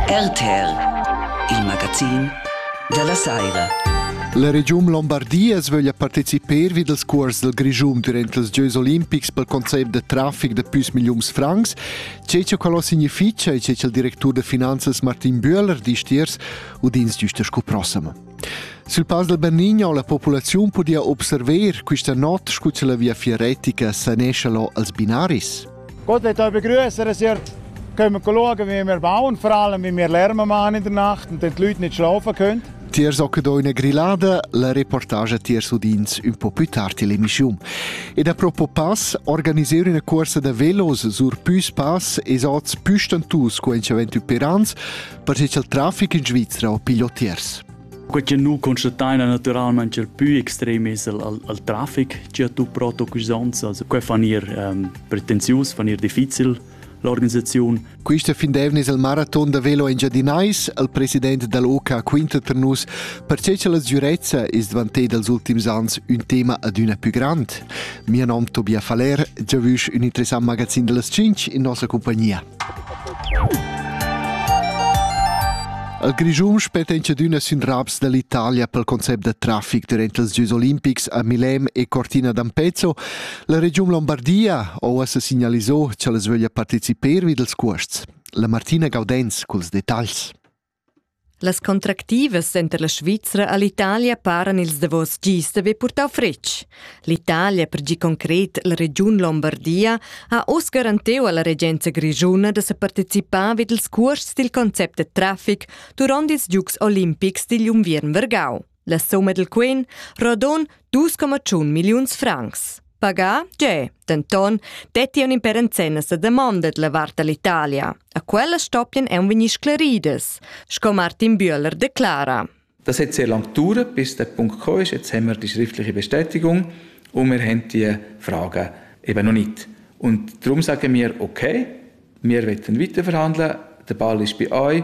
RTR, il magazin da la saira. La regiun Lombardia sveglia participar vi dals cuors dal Grischun durant els giois olimpics pel concept da trafic da püs milliuns francs. Che che quello significa e che che il directur da finanzas Martin Bühler disch tiers udins giusta scu prossima. Sul Pass del Bernigno la populazione podia observer questa notte scu che la via fieretica sanescia lo als binaris. Gott hat euch begrüßt, er siert, können wir schauen, wie wir bauen, vor allem wie wir Lärme machen in der Nacht und die Leute nicht schlafen können. Tier socket ho üna grillada, la reportage tier sudins un po più tardi l'emission. E da propo pass organiser una corsa da velos sur püs pass e sots püstantus quencha ventü per ans, perché il traffic in Svizzera ho piglio tiers. Quei che nu constatein è naturalmente il più extrem es al, al, al traffic che tu proto cusanza. Also, quei fan ir um, pretensius, fan ir difficil l'organisaziun. Questa findevne il maraton da velo engiadinais al president dall'OK quinta per nus perche che la sgürezza is dvantei dals ultims ans un tema adüna più grand. Mio nom Tobias Faller, giavüsch un interessant magazin dellas 5 in nossa compagnia. Al Grischun spetta incedüna sün raps da l'Italia pel concept da trafic durant els Gieus olimpics a Milem e Cortina d'Ampezzo. La regiun Lombardia ho uossa signalisò cha las vöglia parteciper vi dels cuosts. La Martina Gaudenz culs detagls. Las contractivas center la Svizra a l'Italia paran ils davos gis d'avair purtau fretg. L'Italia, per gi concret la regiun Lombardia, ha oz garanteu alla regenza grischuna da se participar vid ils cuors dil concept da traffic duront ils Giugs olimpics digl unviern vargau. La summa dal quen rodon 2,1 milliuns francs. Pagà giè, denton, detti un imperenzenna sa demanda la vart dall'Italia. A quella stoppien ein vegnir sclaridas, sco Martin Bühler declara. Das hat sehr lange gedauert, bis der Punkt gekommen ist. Jetzt haben wir die schriftliche Bestätigung und wir haben die Fragen eben noch nicht. Und darum sagen wir, okay, wir wollen weiterverhandeln, der Ball ist bei euch,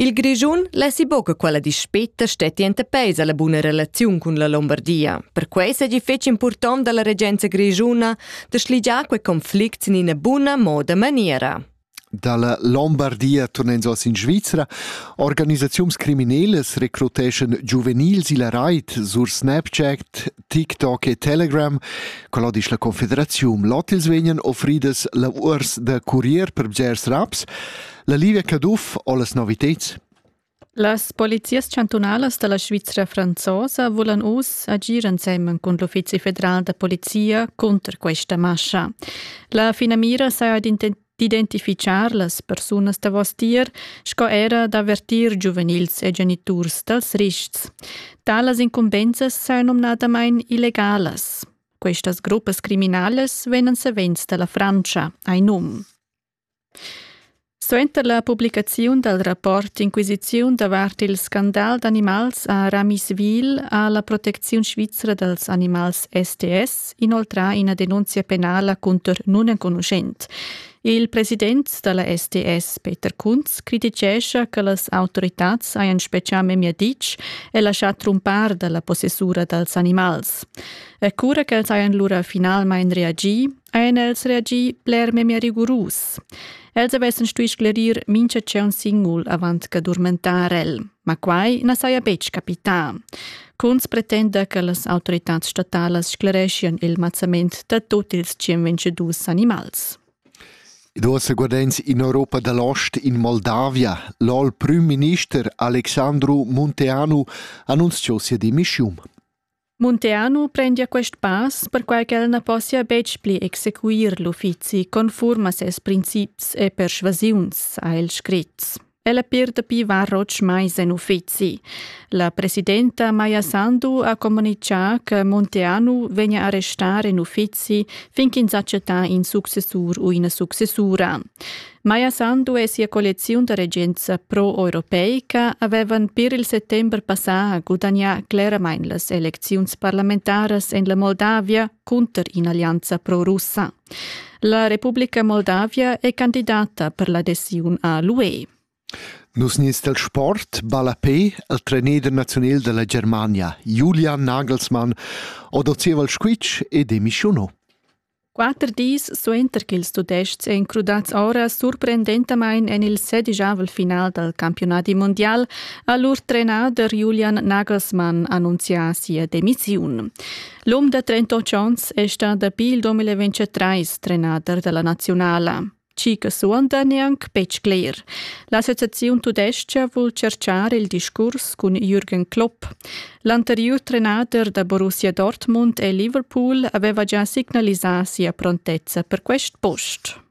Il Grischun lessi buca quella dispeta stetti enta peis alla buna relaziun cun la Lombardia. Perquei seigi fetg impurtont dalla regenza grischuna da schligiar quei conflict in ina buna moda maniera. Dalla Lombardia turnens oss in Svizra. Organisaziuns criminelles recruteschan giuvenils illa rait sur Snapchat, TikTok e Telegram. Quella disch la Confederaziun Lotils vegnan offridas lavurs da curier per bgers raps. La Livia Caduff ho las noviteds. Las polizias chantunalas da la Svizra franzosa vulan uss agir ensemen cun l'Uffizi federal da polizia cunter questa mascha. La finamira saja D'identifitgar las persunas davostier sco era d'avertir giuvenils e geniturs dals rists. Talas incumbensas sain nomnadamain illegalas. Questas gruppas criminales vegnan savens dalla Francia, ein num. Suenter la publicaziun dal rapport Inquisiziun davart il scandal d'animals a Ramiswil a la protecziun svizra dals animals STS inoltrà ina denunzia penala cunter nunenconuschent. Il president da la SDS, Peter Kunz, crititgescha che las autoritads hajan spezià memia ditg e laschà trumpar da la possessura dals animals. E cura ch'els hajan lura finalmain reagì, hajan els reagì bler memia rigurus. Els avessan stuì sclerir mincha tscheu singul avant che durmentar el. Ma quai na saja betg capità. Kunz pretenda che las autoritads statalas sclereschian il mazzament da tut ils 122 animals. Ed uossa guardens in Europa dall'ost, in Moldavia. L'ol prim minister Alexandru Munteanu annunziò sia demissiun. Munteanu prendia quest pass perquai ch'el na possia betg pli exequir l'uffizi conform a ses princips e persuasiuns, ha el scrit. Ella per dapi var otg mais en uffizi. La presidenta Maja Sandu ha comunicà che Monteanu vegna arrestar en uffizi fin ch'ins accetta in successur u ina successura. Maja Sandu e sia colleziun da regenza pro-europeica avevan per il settembre passà gudagnà cleramain las elecziuns parlamentaras en la Moldavia cunter in'allianza pro-russa. La Republica Moldavia è candidata per l'adesiun a l'UE. Nus nins del sport balla pe al trainer nazional della Germania, Julian Nagelsmann, odozieva il squitsch e demissionò. Quatter dis suenter che ils Tudests èn crudats ora surprendentamain en il sedigiavel final dal campionati mondial, ha lur trenader Julian Nagelsmann annunzià sia demissiun. L'um da 38 ans è stà dapi il 2023 trenader da la naziunala. Chi che suonda neanc betg cler. L'associaziun tudestga vul cerchar il discurs cun Jürgen Klopp. L'anteriur trenader da Borussia Dortmund e Liverpool aveva già signalisà sia prontezza per quest post.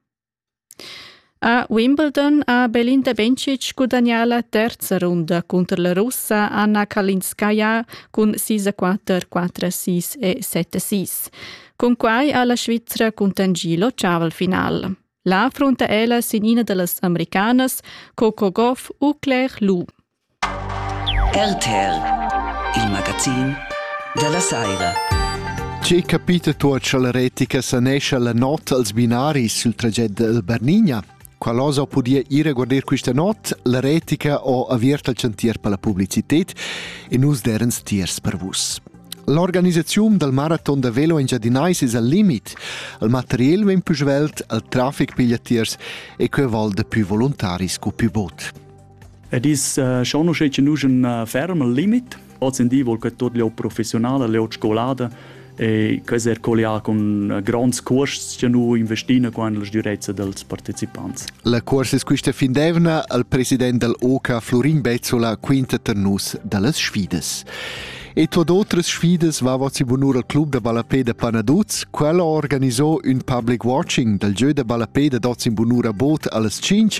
A Wimbledon ha Belinda Bencic gudagnà la terza runda cunter la Russa Anna Kalinskaya cun sis a quatter, quatter a sis e set a sis. Cunquai ha la Svizra cuntanschì l'ottavel-final. Là affrunta ella sin ina da las americanas Coco Gauff u Claire Lu. RTL, il magazin dalla saira. Tge capita tuot cha la retica sanescha la not als binaris sul traget da Bernigna? Qual'osa podia ir a guarder questa not? La retica ho aviert al chantier per la publicited e nus derens tiers per vus. L'organisaziun dal maraton da velo engiadinais es al limit. Il material vegn più svelt, il trafic piglia tiers e que val da più voluntaris scu più bot. Ed is uh, schonusce che nus un uh, ferm limit, ozendi vol che tot le professionale, le scolada, e quasi er collià con uh, grands cuorsts che nu investina qua en la sdurezza dels partecipants. La cuorses quista findevna al president dal OCA Florin Bezzola quinta tar nus dallas sfidas. E tot otras sfidas vava si bunur al club da ballapé da Panaduz. Quel ha organizò un public watching dal jeu da ballapé da dots in bunura boot allas 5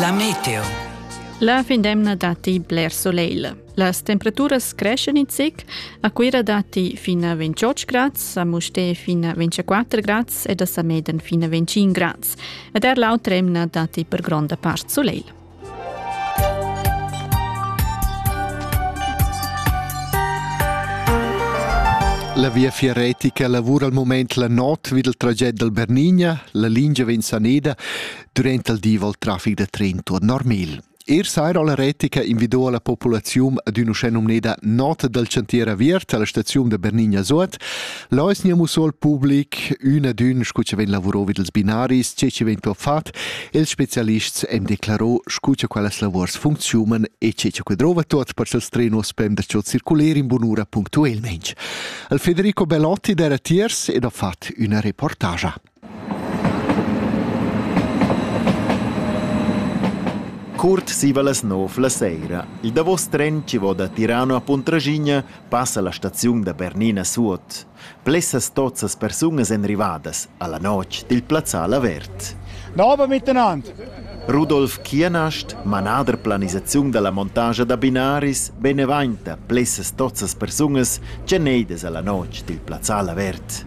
La meteo. La fin d'emna datti bler soleil. Las temperaturas creschen in zic. A Cuira datti fin a 28 grads, a Mustè fin a 24 grads ed a Sameden fin a 25 grads. Ed er l'autra emna datti per gronda part soleil. La viafier retica lavura al mument la notg vid il traged dal Bernigna. La lingia vegn saneda durant il di val traffic da tren tuorn normal. Er saira la retica invidò la populaziun ad un'uschè numneda nota dal chantier aviert alla staziun da Bernigna Suot. Là es nia musso al public ün ad ün scu cha vegn lavurò vi dals binaris, che chi vegn però fat, ils spezialists han declarò scu cha quellas lavuors funcziunan e che cha que drova tuot per cha'ls trenos pem da cho circuler in bunura punctuelmaing. Il Federico Belotti d'era tiers ed ha fat üna reportagia. Cuort siva las nov la seira. Il davos tren chi vo da Tirano a Puntraschigna passa la staziun da Bernina suot. Plessas tozzas persunas èn rivadas a la notg dil plazzal avert. Da ober miteinander. Rudolf Kienast, manader planisaziun da la montagia da binaris, benevainta plessas tozzas persunas tgeneidas a la notg dil plazzal avert.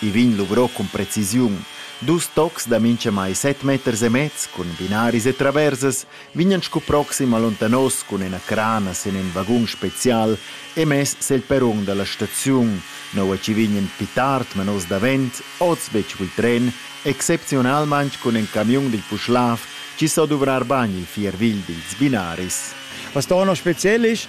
I vegn luvrò cun precisiun. Dus tocs da minchamai set meters e mez cun binaris e traversas vegnan scu proxim allontanos cun üna crana sün ün vagun special e mess sel perun da la staziun, noua chi vegnan pü tard manos davent oz be il tren, excepziunalmaing cun ün camiun dil Puschlav chi so duvrar bagn il fier vegl dils binaris. Was da auch noch speziell ist,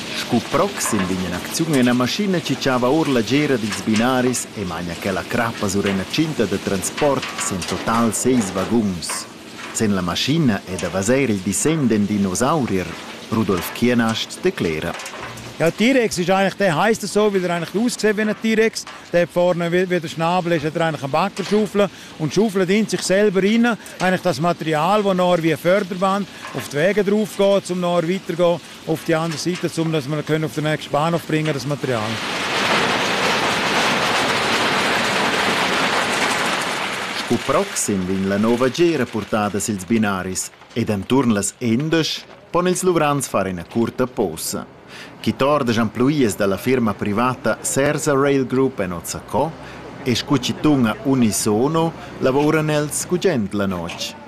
Sco proxim vegn in'acziun ina maschina che tschava ord la tgira dils binaris e maina quella crappa sur ina tschinta da transport sin total seis vaguns. Sin la maschina è da vesair il dissegn d'in dinosaurier. Rudolf Kienast declera. Ja, T-Rex ist eigentlich, der heisst so, weil er eigentlich aussieht wie ein T-Rex. Der vorne wie, wie der Schnabel ist, hat er eigentlich eine Backerschaufel und schaufelt ihn sich selber rein. Eigentlich das Material, das noch wie ein Förderband auf die Wege drauf geht, um noch weiterzugehen. auf die andere Seite, um dass wir können auf den nächsten Bahnhof bringen, das Material. Sco proxim vegn la nova gera portada sils binaris ed enturn las endas pon ils luvrants far ina curta posa. Chi tordas emploies dalla firma privata Sersa Rail Group en Ozzaco e scu chi tunga unisono lavoran els gugent la notg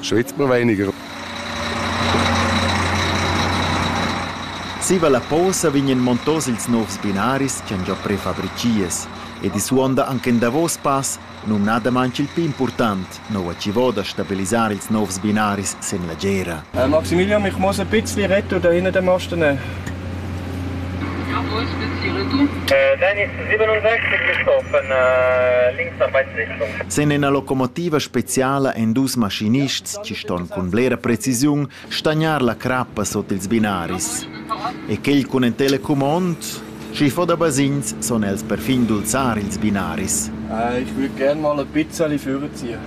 Svizra weniger. Zieva la posa vegnan montos ils novs binaris ch'han già prefabritgias ed i suonda anche in davos pass, numnadamain il pli important, nova civò da stabilisar ils novs binaris sin la gera. Maximilian, ich muss ein bisschen retto da hinten dem Osten. Sin ina locomotiva speciala èn dus maschinists che ston cun blera precisiun stagnar la crappa sut ils binaris. E quel cun in telecumond? Sch'i fa da basegns, son els perfin dulzar ils binaris. Ich würde gerne mal ein bisschen führen ziehen.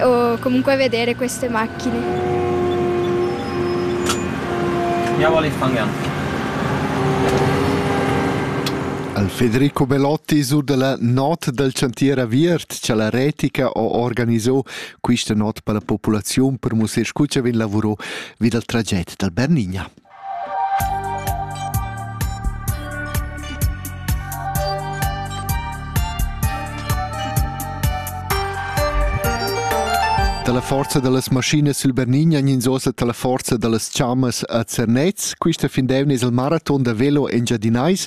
O comunque vedere queste macchine. Andiamo all'Ifangan. Al Federico Belotti sur dalla not dal chantier aviert cha la Retica ho organiso quista not per la populaziun per mussar scu cha vegn lavurò vi dal traget dal Bernigna. Dalla forza dallas maschinas sil Bernigna ins osa dalla forza dallas chammas a Zernez. Quista fin d'eivna es il maraton da velo Engiadinais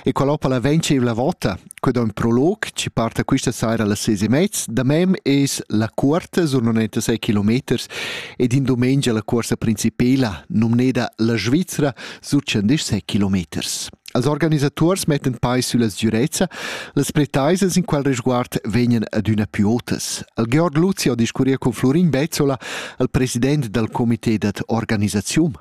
e qual ho la venceivla vota. Que da ün prolog chi parta quista saira alle ses e mezz. Da mem es la cuorta sun 96 kilometers ed in domengia la cuorsa principela, nomneda la Svizzera, sur 116 kilometers. Als organisaturs mettan pais sulla sgürezza, las pretaisas in qual resguard vegnan adüna più otas. Al Georg Luzi ho discurria con Florin Bezzola, al president dal comité dad organisaziun.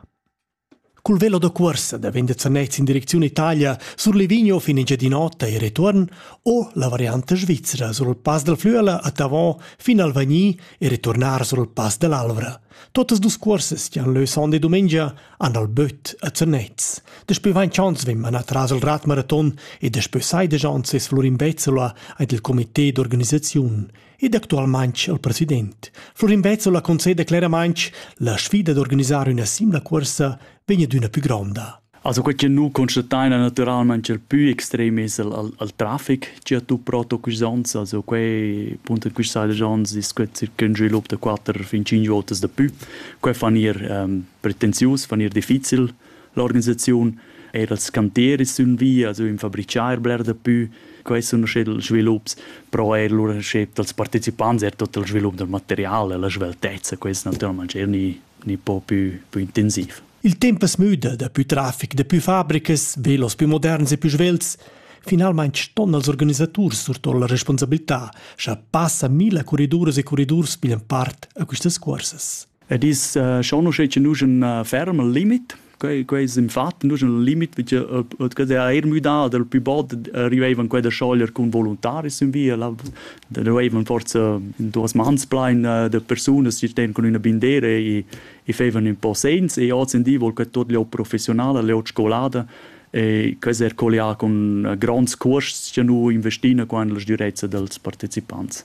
Cul velo da cuorsa daven da Zernez in direcziun Italia sur Livigno fin in Giadinota e retuorn o la varianta svizra sur il Pass dal Flüela a Tavon fin al Vagni e returnar sur il Pass dell'Alvra. Totas dus cuorsas che han leu sonda e dumengia han al böt a Zernez. Daspö vain chans vegn manà tras il Radmaraton e daspö sai da chans es Florin Bezzola aint il comité d'organisaziun. ed actualmain il president. Florin Bezzola conceda cleramain la sfida d'organisar una simile corsa vegna d'una più gronda. Also quel che nu constateina naturalmente il più extrem es al, al, al traffic che tu proto quist ons, also quei punto quist side ons ist gut circa un svilup da 4 fin 5 volte da più. Quei fan ir ähm, pretensius, fan ir difficil. L'organisaziun era als canteris sün via, also in fabriciar bler da pü. Quai sun usché dals svilups, però eir lur recept dals partecipants, er tot il svilup dal material e la sveltezza, quest natüralmaing eir gnü, gnü po pü, pü intensiv. Il temp as müda, dapü trafic, dapü fabricas, velos pü moderns e pü svelts. Finalmaing ston els organisaturs surtour la responsabilità, cha passa milla corriduras e corridurs piglian part a quistas cuorsas. Ed is schon uschè che nus un ferm al limit. Quei, quei es infatti nus al limit perché che er eir müdà dal pü bod arrivevan quella scholer cun voluntaris in via, la dovrevan forza in duas mans plein de persunas che sten cun üna bindera e e fevan ün po segns e ozendi vol che tot l'ho professionala, l'ho scolada e quest er collià con gronds cuors che nu investina qua in las durezza dels partecipants.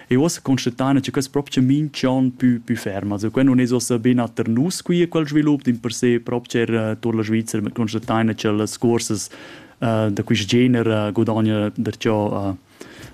E uossa constatain cha quest propcha minch'an pü pü ferm. Also quai nun es uossa bena ter nus qui quel svilup dimpersè propcha er tuot la Svizra, ma constatain cha las cuorsas da quist gener gudagna darcheu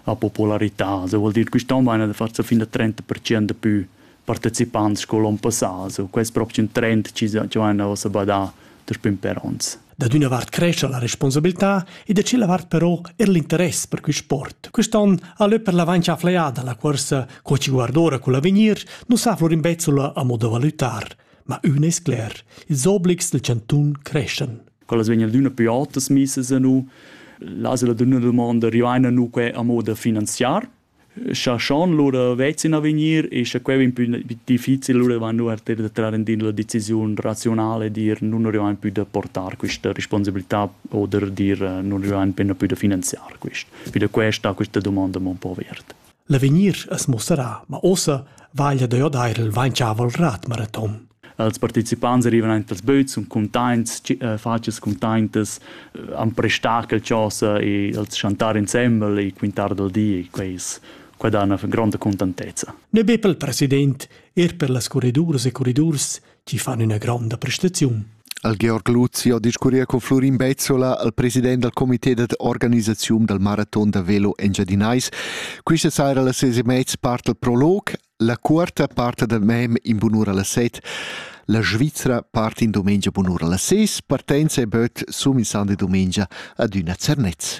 a popularità. Also vuol dir quist'an vaina da farsa fin a 30% pü partecipants sco l'on passà. So, quest proxim trend ci han ossa badà dus pim per ons. Da d'üna vart crescia la responsabilità e da cila vart però er l'interess per quist sport. Quist'on ha lö per l'avancha fleiada la cuorsa co ci guardora col avegnir nu sa Florin Bezzola a modo valutar, ma ün es cler, ils obligs del cantun creschan. Quella vegna d'üna pü otas misas a nu, l'asela d'üna domanda rivaina nu que a moda finanziar, Scha schon lura vezin a vegnir e scha quai vain pü difficil, lura vain lura eir da trar aint la decisiun raziunala e dir nun rivain pü da portar quista responsabiltà oder dir nun rivain penna pü da finanziar quist. Pü da quai sta quista dumonda amo ün po aviert. L'avegnir as muossarà, ma uossa vaglia da jo d'eir il vainchavel rat maraton. Els participants arrivan aint als böts, sun cuntaints, fatschas cuntaintas, han prestar quel chosa e els chantar insembel e quintar dal di e quai es quai dà üna gronda cuntantezza. Ne be pel president, eir per las corridurs e corridurs chi fan üna gronda prestaziun. Al Georg Luzzi ho discurria con Florin Bezzola, al president dal comité dad organisaziun dal maraton da velo Engiadinais. Quista saira a las ses e mez part il prolog, La cuorta part dal mem in bunura las set. La Svizra part in dumengia bunura las ses. Partenza e böt sum in sande dumengia ad üna Zernez.